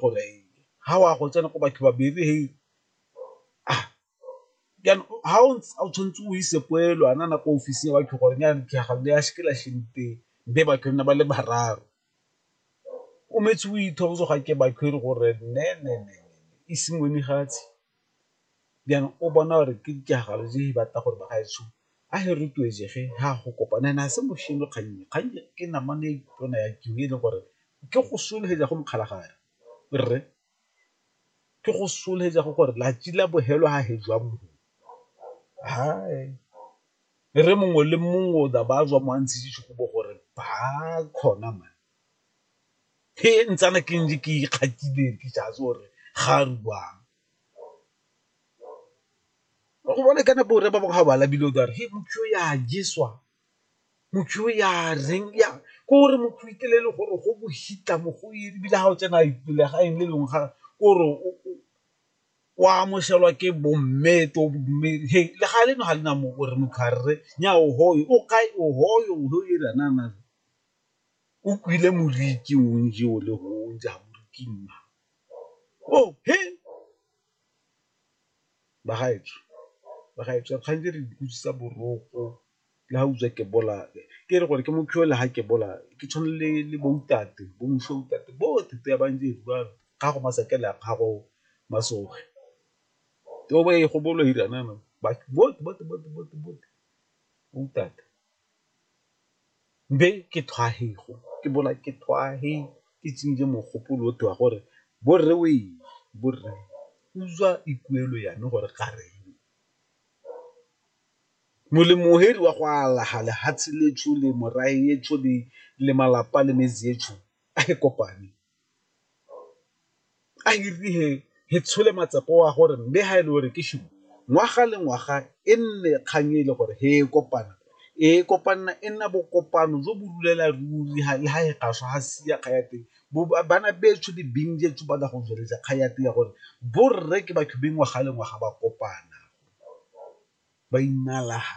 gore ha wa go tsena ko batho ba bere he ha o tshwanetse o ise poelo a na na ko office ya batho gore nyana ditlhaga le ya sekela šente be batho nna ba le bararo o metse o ithosa ga ke batho e le gore nne ise ngwene fatshe. then o bona gore ke ditiragalo tse di batla gore bagaetsho a he rotloetsege ha go kopana ene a se mošhini kgannye kgannye ke namane e tona ya kiwi e leng gore ke go solofetsa go mokgalagare rre ke go solofetsa go gore latsi la bofelo ha he jwa mo re mongwe le mongwe o tla ba a tswa mo a ntshitse sehuba gore ba kgona man. He ntsana ke ntse ke ikgatile ke sa itse gore ga a rubang, wa go bona kana borre ba bangwe ga ba labile o tla re he motho yo a jeswa, motho yo ya reng ya ke gore motho o itlela e le gore go bohitla mo go iri ebile ga o tsena legaeng le lengwe ga kore o amogelwa ke bo mme to bo mme he legae leno ga le na mo gore motho a rre nyaa ohoye o kae ohoye . O kwile moriti o ntse o le go o ntse a moriti mma. Oh, he! Bagaetsho, bagaetsho a re kgang tse re di utlwisisa boroko le ga utswa ke bolawe. Ke re gore ke mo le ga ke bolawe ke tshwana le le bo ntate, bo moswi wa ntate bote te ba ntse e rua gago masakela a gago masogi. Te o bo e gobolo ira jaanong bote bo ntate. be ke thwahego ke bona ke thwahe ke tsenye mogopolo o tewa gore borre o eng borre utswa ikuelo yane gore ga re molemo o hedi wa go alaga lehatshe le tshole morae e tshole le malapa le metse e tshole a e kopane a hirile he tshole matsepo wa gore mme ha e le gore ke shimo ngwaga le ngwaga e nne kgang e le gore he e kopana e kopanna e nna bokopano jo bo rulela ruri le ha e gaswa ha sia kga ya teng bana betsho di bing jetso ba go tsweletsa kga ya teng ya gore borre ke batho beng ngwaga le ngwaga ba kopana ba inalaga